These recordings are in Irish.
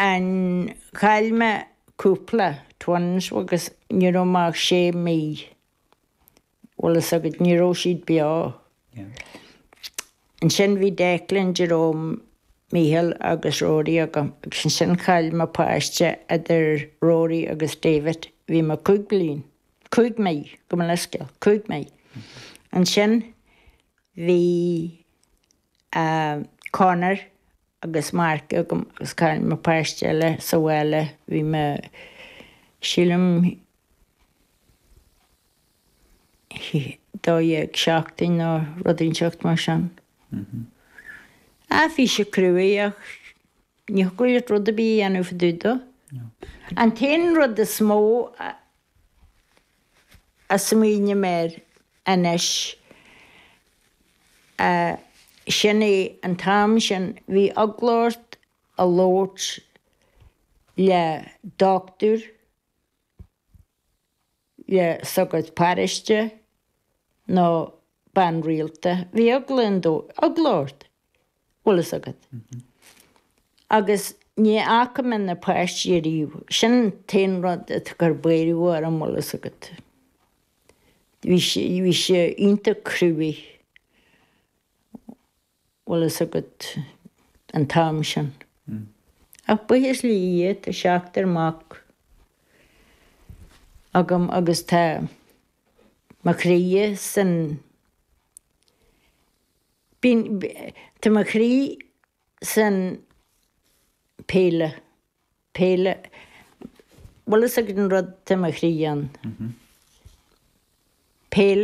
Ó chaill mé cúpla. Twins agus ní raibh mé ach sé mhí. Bhfuil fhios agat, ní raibh siad beo. Ansin bhí Declan, Jerome, Mícheál agus Rory agam agus ansin chaill mé páiste idir Rory agus David. Bhí mé cúig bliain. Cúig mhí, gabh mo leithscéal. Cúig mhí. Ansin bhí Conor Agus Mark agam agus Carl chaill mé páiste eile sa bhaile bhí mé sílim 12 seachtain nó rud inteacht mar sin. Ach bhí sé cruaigh ach ní thiocfadh leat rud ar bith a dhéanamh fá dtaobh de. An t-aon rud is mó a. a smaoiním air anois, sin é an t-am sin, bhí eagla ort a labhairt le dochtúir, le sagart paróiste nó bean rialta, bhí eagla ort, bhfuil fhios agat. Agus ní fhaca mé na páistí ariamh, sin an t-aon rud a chuir buaireadh orm bhfuil fhios agat. Bhí sé, bhí sé iontach cruaigh. Bhfuil fhios agat an t-am sin. Ach buíochas le Dia, tá seachtar mac agam agus tá mo chroí san, tá mo chroí san pheil, peil, bhfuil fhios agat an rud atá mo chroí ann. Peil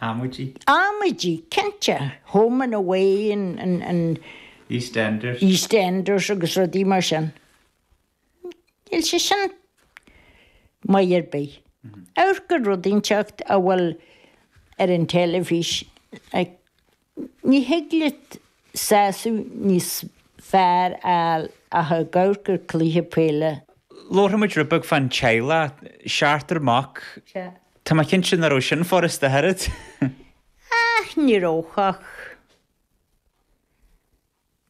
Amaidí? Amaidí, cinnte. Home and away and. EastEnders agus rudaí mar sin. Níl sin maith ar bith. Amharc ar rudaí inteacht a bhfuil ar an teilifís. Ní thig leat sásamh níos fearr a fháil ach ag amharc ar chluiche peile. Labhair muid rud beag fán teaghlach, seachtar mac. Tá mé cinnte nach raibh sin furasta, a Harriet. Ach ní raibh, ach.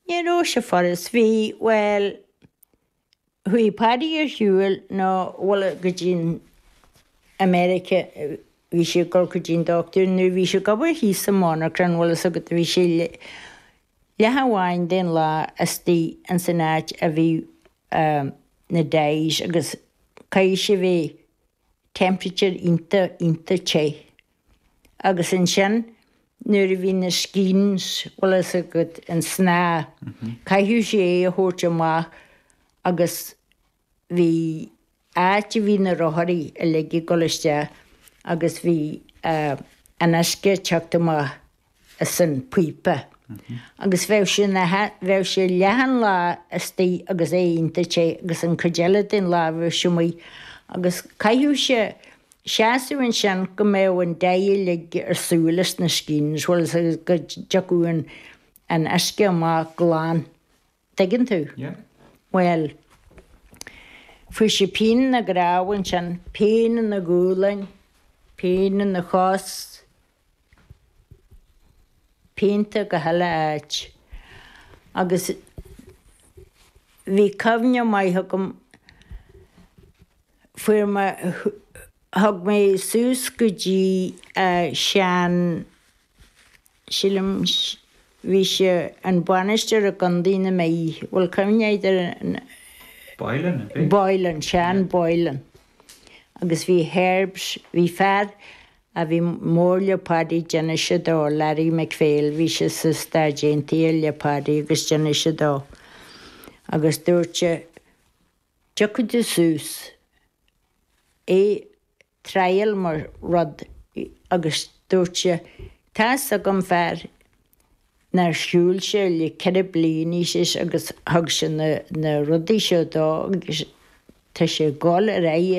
Ní raibh sé furasta. Bhí, bhuel. Chuaigh Paddy ar shiúil bhfuil fhios agat go dtí an America bhí sé ag dul go dtí an dochtúir nuair bhí sé ag obair thíos sa monarchan bhfuil fhios agat bhí sé leath amháin den lá istoigh ins an áit a bhí na dyes agus caithfidh sé temperature iontach, iontach te. Agus ansin nuair a bhí na skeins, bhfuil a fhios agat, an snáth, chaithfeadh sé é a thabhairt amach agus bhí áit a bhí na rotháirí uilig ag dul isteach agus bhí an uisce ag teacht amach. as an píopa agus bheadh sé ina, bheadh sé leath an lá istoigh agus é iontach te agus an cuid eile den lá bheadh sé amuigh agus chaithfeadh sé seasamh ansin go mbeadh an dye uilig ar shiúl as na skeins, bhfuil a fhios agat, go dtiocfadh an, an uisce amach glan. dtuigeann tú? Bhuel, fuair sé pian ina dhroim ansin, pian ina ghualainn, pian ina chos, pianta gach uile áit. Agus bhí cuimhne maith agam, fuair mé, thug mé suas go dtí Seán, sílim bhí sé ina bhainisteoir i gCondae na Mí bhfuil cuimhne agat ar an Boylan an bhí? Boylan Seán Boylan agus bhí herbs bhí fear a bhí mór le Paddy d'inis sé dó Larry McPhail bhí sé sna Stáit Aontaithe le Paddy agus d'inis sé dó agus dúirt sé tiocfaidh tú suas é triail mo rud agus dúirt sé tá's agam fear nár shiúil sé le ceithre bliana agus thug sé na rudaí seo dó agus tá sé ag dul ar aghaidh